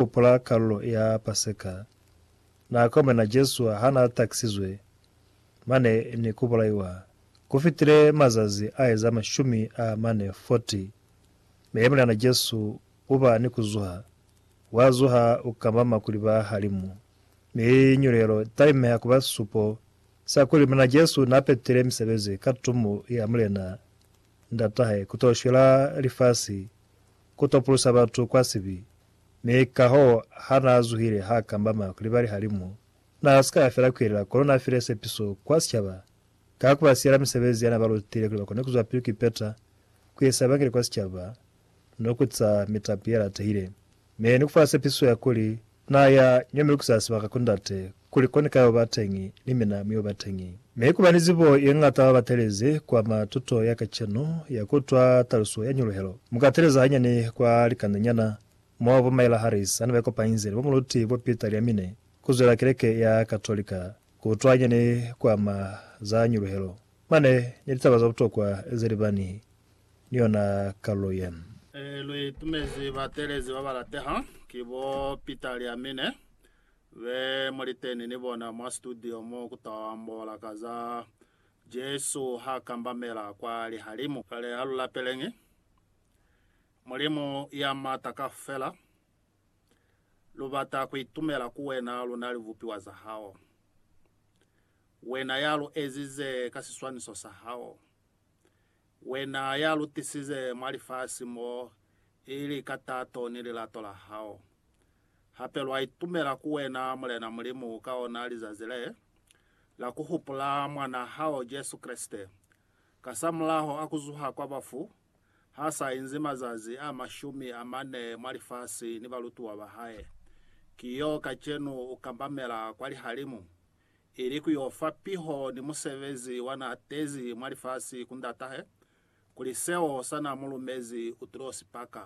Hupula kalulo ya Paseka na komena Jesu ha na takisizwe mane ni ku bulaiwa. Ku fitile mazazi a eza mashumi a mane, 40, mi mulyana Jesu u ba ni ku zuha. Wa zuha, u kambama kuli ba halimu, mi nyulelo i talimeha ku ba sisupo sa kuli Mulena Jesu na petile misebezi ka tumo ya Mulena Ndatahe ku to shwela lifasi, ku to pulusa batu kwa sibi, Mi kahoo, ha naa zuhile haa kambama ku libali halimu, naa si ka ya fela ku yelela, kono naa file sepiso kwa sicaba ka ku ba siyela misebezi ya naa ba lutile kuli ba kone ku zwapili ku ipeta ku isa Evangeli kwa sicaba ni ku ca mitapi ye latehile, mi ni ku fa sepiso ya kuli naa ya ño mi lukiza sibaka ku Ndate Kuli koni ka yo ba teñi, ni mina mi yo ba teñi. Mi kuba ni zibo ye ñata ba batelezi kwa ma tuto ya kacenu ya ku utwa taluso ya nyuluhelo. Mu ka teleza hanyani kwa likanda nyana mo bo Myla Harris hane ba ikopanyize ni bo muluti bo Peter Liamine ku zwela keleke ya Katolika ku utwa hanyani kwa ma za nyuluhelo. Mane ni litaba za butokwa ze li ba ni ni yona kalulo ye. Lu itumezi batelezi ba ba lateha ki bo Peter Liamine Be mu liteni ni bona mwa situdio mo ku ta ambola ka za Jesu ha kambamela kwa lihalimu. Kale ha lu lapeleñi Mulimu ya M'ata Kaufela, lu bata ku itumela ku wena, lu na libupiwa za hao, wena ya lu ezize ka siswaniso sa hao. Wena ya lutisize mwa lifasi mo, ili ka tato ni lilato la hao. Hape lwa itumela ku wena, Mulena Mulimu, ka ona lizazi le, la ku hupula Mwan'a hao Jesu Kreste, kasamulaho a ku zuha kwa bafu, ha sa inzi mazazi a mashumi a mane mwa lifasi ni balutiwa ba hae. Ki yo kacenu u kambamela kwa lihalimu, ili ku yo fa piho ni musebezi wa n'a tezi mwa lifasi ku ndat'ahe, kuli seo sa n'a mu lumezi u t'o si paka,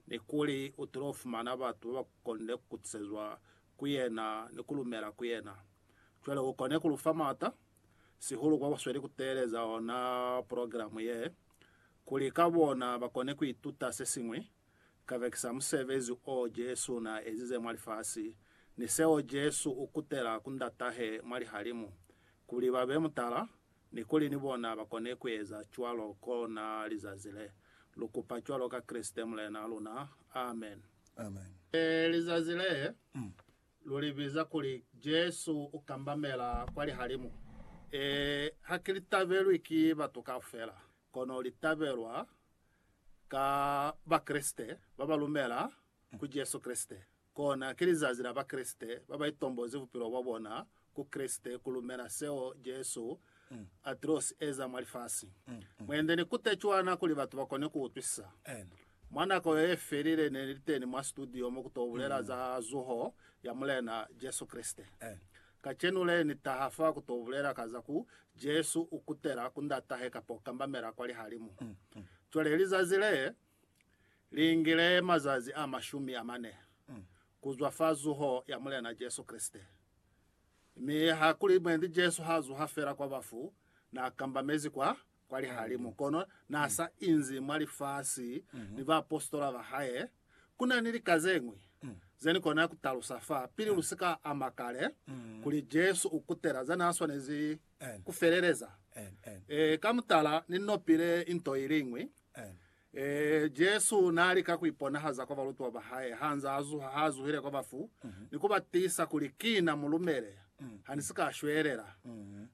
ni kuli u t'o fumana batu ba ba konde ku kutisezwa ku yena ni ku lumela ku yena. Cwale u kone ku lu fa m'ata, sihulu kwa ba sweli ku teeleza ona purogiramu ye, kuli ka bona ba kone ku ituta se siñwi, kabekisa musebezi o Jesu na ezize mwa lifasi, ni seo Jesu u kutela ku Ndatahe mwa lihalimu, kuli ba be mutala, ni kuli ni bona ba kone ku eza cwalo ko na lizazi le. Lu kupa cwalo ka Kreste Mulena luna. Amen. Amen. Lizazi le, lu li biza kuli Jesu u kambamela kwa lihalimu. Ee, ha ki li tabelwi ki batu kaufela. Kono li tabelwa ka Bakreste ba ba lumela ku Jesu Kreste. Kona ki lizazi la Bakreste ba ba itombozi bupilo bwa bona ku Kreste ku lumela seo Jesu a til'o si eza mwa lifasi. Mwende ni kute cwana kuli batu ba kone ku utwisisa. Mwa nako yo ye felile ne ni li teni mwa situdio mo ku t'o bulela za zuho ya Mulena Jesu Kreste. Kacenu le, Ni taha fa ku to bulela ka za ku Jesu u kutela ku Ndatahe kapa u kambamela kwa lihalimu. Cwale lizazi le, li ngile mazazi a mashumi a mane ku zwa fa zuho ya Mulena Jesu Kreste. Mi ha kuli mwendi Jesu ha zuha fela kwa bafu, na kambamezi kwa kwa lihalimu, kono n'a sa inzi mwa lifasi ni baapositola ba hae. Ku na ni lika ze ñwi ze ni kona ku talusa fa, pili lu si ka ama kale, kuli Jesu u kutela za n'a swanezi ku feleleza. Ee, ka mutala, ni nopile nto i liñwi. Ee, Jesu naalika kuiponahaza kwa balutiwa bahae hanze azuha, haazuhile kwa bafu, ni kubatisa kuli, Kina, mulumele, hanisika shwelela.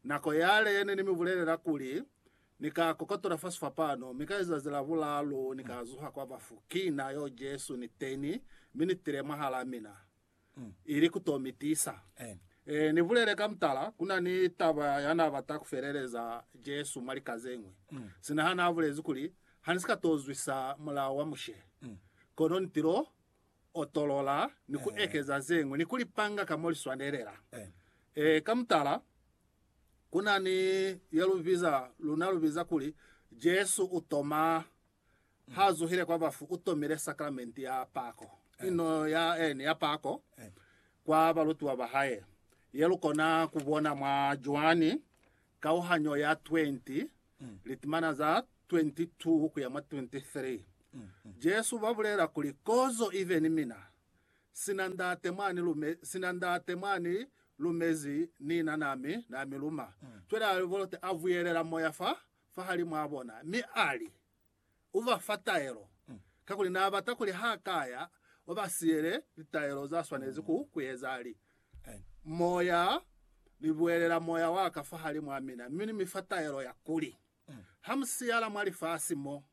Nako yale ne nimibulelela kuli, Nika kokotola fa sifapano, mi ka lizazi la bulaalu Nika zuha kwa bafu. Kina yo Jesu, niteni, mi nitile mwahalaa mina. ili ku to mi tisa. Ni bulele ka mutala, ku na ni taba ya na bata ku feleleza Jesu mwa lika ze ñwi. Sina ha na bulezi kuli, Ha ni si ka to zwisa Mulao wa Mushe, kono ni tilo otolola ni ku ekeza ze ñwi ni ku li panga ka mo li swanelela. Ka mutala, ku na ni ye lu biza, luna lu biza kuli, Jesu u to ma. Ha zuhile kwa bafu, u tomile sakramenti ya pako, ino ya ene ya pako, kwa balutiwa ba hae, ye lu kona ku bona mwa Joani kauhanyo ya 20, litimana za 22 ku ya mwa 23. Jesu ba bulela kuli, Kozo ibe ni mina, sina Ndate mwa ni lume, sina Ndate mwa ni lumezi, ni na na mi, na mi luma. Cwale a bolote, a buyelela moya fa fahalimwaa bona, mi ali, Ubafa taelo, kakuli naabata kuli hakaya ubasiyele litaelo zaswanezi ku kueza, li, Moya, Libuelela Moya waka fahalimwaa mina, mi Nifa taelo ya kuli, hamusiyala mwa lifasi mo,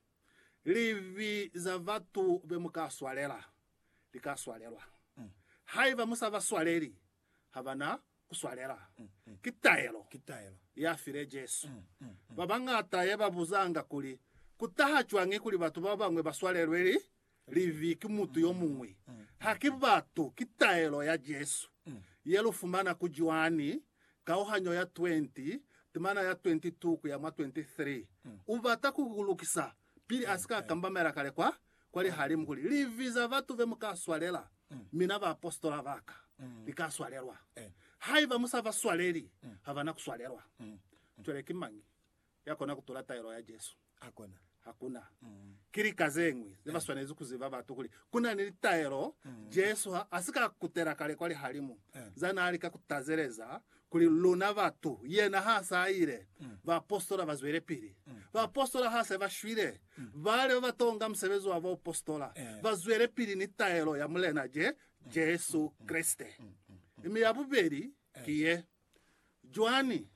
libi zabatu bemuka swalela, lika swalelwa. Haiba musabaswaleli, ha ba na ku swalela. Ki taelo ya file Jesu. Ba bañata ye ba buzanga kuli, Ku taha cwañi kuli batu ba bañwi ba swalelwe libi ki mutu yo muñwi? Haki batu, ki taelo ya Jesu ye lu fumana ku Joani kauhanyo ya 20, timana ya 22 ku ya mwa 23. U bata ku ku lukisa Pili a si ka kambamela kale kwa, kwa lihalimu kuli, Livi za batu be mu ka swalela, mina baapositola ba ka, li ka swalelwa. Haiba mu sa ba swaleli, ha ba na ku swalelwa. Cwale ki mañi ya kona ku tula taelo ya Jesu? Hakuna. Ki lika ze ñwi ze ba swanezi ku ziba batu kuli ku na ni litaelo Jesu ha a si ka kutela kale kwa lihalimu za naa lika ku tazeleza Kuli luna batu, yena ha sa ile, baapositola ba zwelepili. Baapositola ha se ba shwile, bale ba ba tonga musebezi wa baupositola ba zwelepili ni taelo ya Mulena Je, Jesu Kreste. Mi ya bubeli ki ye, Joani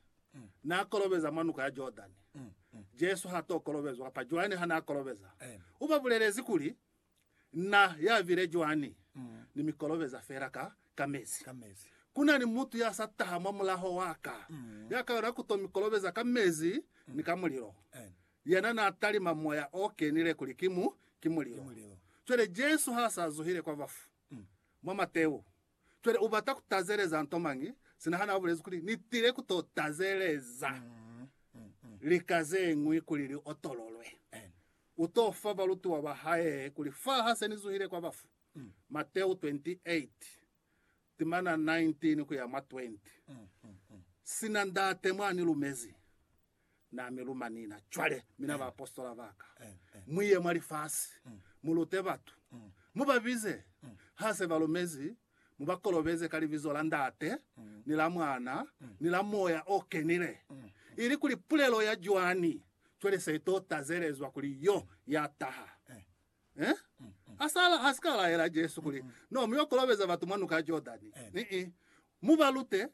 n'a kolobeza mwa Nuka ya Jordani. Jesu h'a t'o kolobezwa, kapa Joani ha n'a kolobeza, u ba bulelezi kuli, Na ya bile cwani ni mikolobeza fela ka, ka mezi? Ka mezi. Ku na ni mutu ya sa taha mwa mulaho wa ka, ya ka yona ku to mikolobeza ka mezi ni ka mulilo. Amen. Yena na talima Moya o Kenile kuli ki mu, ki Ki mulilo. mulilo. Cwale Jesu ha sa zuhile kwa bafu, mwa Mateo, Cwale u bata ku tazeleza nto mañi, sina hana ubulezi kuli, Ni tile ku to tazeleza lika ze ñwi kuli li otololwe. U to fa balutiwa ba hae kuli, Fa ha se ni zuhile kwa bafu, Mateo 28, timana 19 ku ya mwa 20, sina Ndate mwa ni lumezi, Na mi luma nina. Cwale, mina baapositola ba ka, mu ye mwa lifasi, mu lute batu. Mu ba bize, ha se ba lumezi, mu ba kolobeze ka Libizo la Ndate, ni la Mwana, ni la Moya o Kenile, ilikuli pulelo ya Joani cwale se to tazelezwa kuli Yo ya taha. Eh? A sa la, a si ka laela Jesu kuli, No, mu yo kolobeza batu mwa Nuka ya Jordani. Ni-i. Mu ba lute,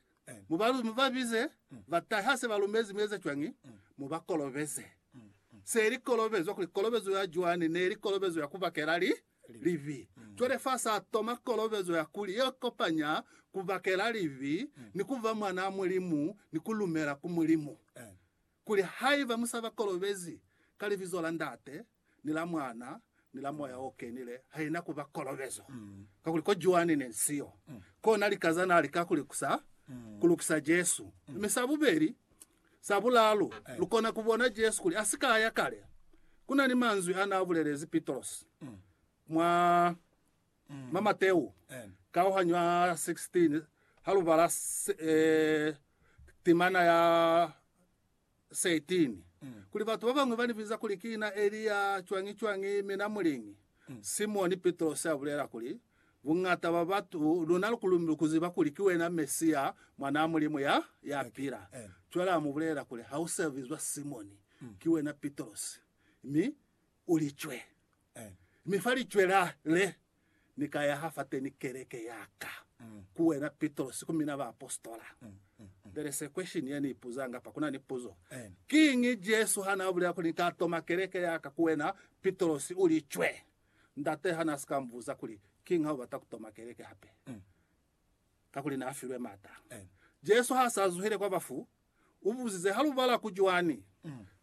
mu ba, mu ba bize, ba tahe ha se ba lumezi mi eza cwañi, mu ba kolobeze. Se li kolobezwa kuli kolobezo ya Joani ne li kolobezo ya ku bakela li, libi. Cwale fa sa toma kolobezo ya kuli ye kopanya ku bakela libi ni ku ba mwanaa Mulimu ni ku lumela ku Mulimu. Kuli haiba mu sa ba kolobezi ka Libizo la Ndate, ni la Mwana, ni la Moya o Kenile, haina ku ba kolobezo. Kakuli ko Joani ne si yo, kona lika za na lika ku likusa, ku lukisa Jesu. Mi sa bubeli, sa bulalu, lu kona ku bona Jesu kuli a si ka ya kale. Ku na ni manzwi a na bulelezi Pitrosi mwa Mwa Mateu kauhanyo ya 16, ha lu bala timana ya 13, kuli batu ba bañwi ba ni biza kuli ki na Elia, cwañi-cwañi, mi na muliñi. Simoni Pitrosi a bulela kuli, Buñata bwa batu, lu na lukulumbi lu ku ziba kuli ki wena Mesia, Mwanaa Mulimu ya, ya pila. Cwale a mu bulelela kuli, Ha u si a bizwa Simoni, ki wena Pitrosi, mi u li cwe. Mi fa licwela le, Ni ka yaha fateni keleke ya ka, ku wena Pitrosi, ku mina baapositola. Bele se question ye ni ipuzanga apa, ku na ni puzo. Kiñi Jesu ha na bulela kuli, Ni ka toma keleke ya ka, ku wena Pitrosi, u li cwe? Ndate ha na si ka mu buza kuli, Kiñi ha u bata ku toma keleke hape? kakuli n'a filwe m'ata. Jesu ha s'a zuhile kwa bafu, u buzize, Ha lu bala ku Joani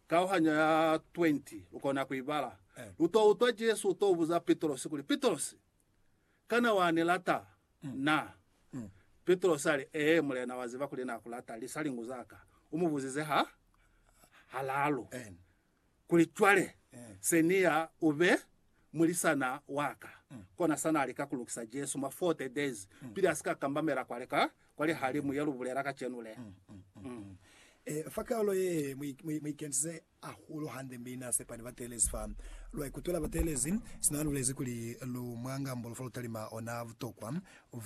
kauhanyo ya 20, lu kona ku i bala, lu t'o utwa Jesu u t'o buza Pitrosi kuli, Pitrosi, kana wa ni lata na? Pitrosi a li, Ee, Mulena, wa ziba kuli na ku lata, lisa lingu za ka. U mu buzize ha halalu. Kuli cwale se ni ya u be mulisana wa ka, kona sa na lika ku lukisa Jesu mwa 40 days pili a si ka kambamela kwale ka kwa lihalimu ye lu bulela kacenu le. Fa kalo ye, mu ikentize hahulu hande mi na sepa ni bateelezi fa lwa ikutwela bateelezi. Sina lulezi kuli lu mwa ngambululo fa lu talima ona butokwa.